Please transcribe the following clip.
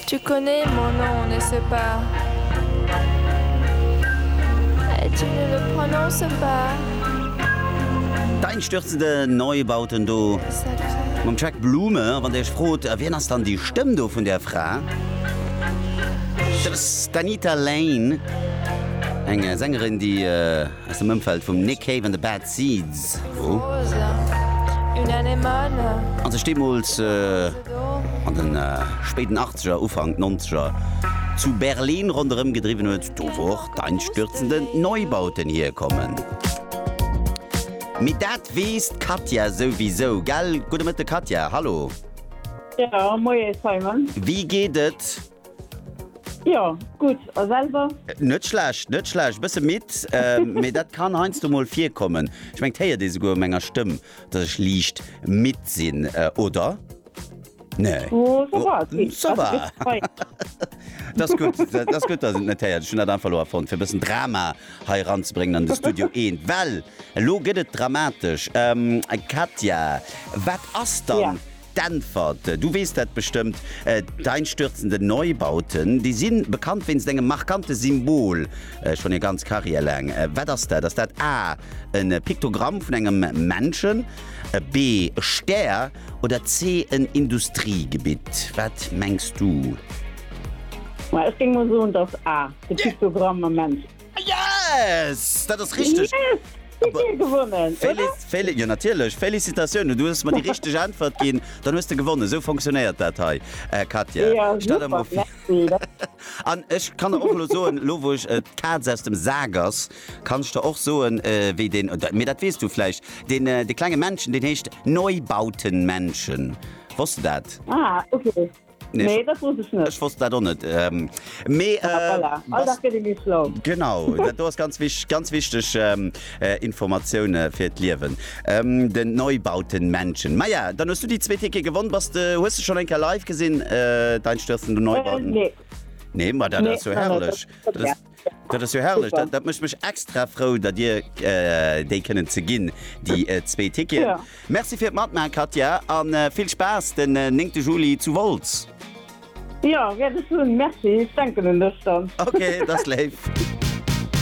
Tu connais mon nom, n'est-ce pas? Et tu ne le prononces pas? D'einstürzende Neubauten do mam Jack Blume. A wann Dir Iech frot, wien ass dann déi Stëmm do vun där Fra? Dat ass d'Anita Lane, eng Sängerin, déi. Aus dem Ëmfeld vum Nick Cave and the Bad Seeds hu a sech deemools an de spéiden Achtzeger, Ufank Nonzeger zu Berlin ronderëm gedriwwen huet, do wou och d'einstürzende Neubauten hierkommen. Mee dat weess d'Katja souwisou, gell? Gudde Mëtte Katja, hallo! Jo, moie Simon! Wéi geet et? Jo, gutt. A selwer? Net schlecht, net schlecht. Bësse midd, mee dat kann heiansdo mol virkommen. Ech mengen, 't héiert ee souguer u menger Stëmm, dass ech liicht midd sinn, oder? Nee? Oh, ça va, et geet. Ça va. Dat ass gutt, dat ass gutt, dass een et net héiert. Ech hunn dat einfach elo erfonnt, fir e bëssen Drama hei eranzebréngen an de Studio Eent, well elo gëtt et dramatesch. Katja, wat ass dann. Ja. D'Äntwert, du weess dat bestëmmt, D'einstürzenden Neubauten, déi si bekannt wéinst engem markante Symbol schonn hir ganz Karriär laang. Wat ass dat? Ass dat A, e Piktogramm vun engem Menschen, B, e Stär oder C, en Industriegebitt? Wat mengs du? Ech géing mol soen, et ass A, de Piktogramm mam Mensch. Yes! Dat ass richteg! Yes! Hutt Dir gewonnen, oder? Jo natierlech, Félicitatiounen, du hues mer déi richteg Äntwert ginn, dann hues de gewonnen. Esou fonctionéiert dat hei, Katja. Jo, super, merci. An ech kann der och elo soen, elo wou ech d'Kaz aus dem Sak ass, kann ech der och soen, wéi deen, mee dat weess du vläicht, deen, de klenge Männchen, deen heescht Neubautenmännchen. Wosst de dat? Ah, okay. Nee, dat wosst ech net. Ech wosst dat och net. Ähm, mee, Ah, äh, voilà. All was- Dag gëtt ee méi schlau. Genau, dat do ass ganz, wich, ganz wichteg ähm, äh, Informatioune fir d'Liewen. Ähm, den Neubauten Menschen. Maja, dann hues du déi zwee Ticket gewonn. Bass de, hues du schon eng Kéier live gesinn, äh, dein Stürzen den Äh, Neubauten? nee. Nee, ma dat Nee, ass jo noch net. herrlech. Dat- Dat ass, Dat ass jo herrlech, dat mécht mech extra frou, datt Dir déi kënnen ze ginn, déi zwee Ticketen. Merci fir d'Matmaachen, Katja, a vill Spaass den 9 Juli zu Wolz. Jo, wäert ech hunn. Merci, ech denken un dech dann. Ok, dat ass léif.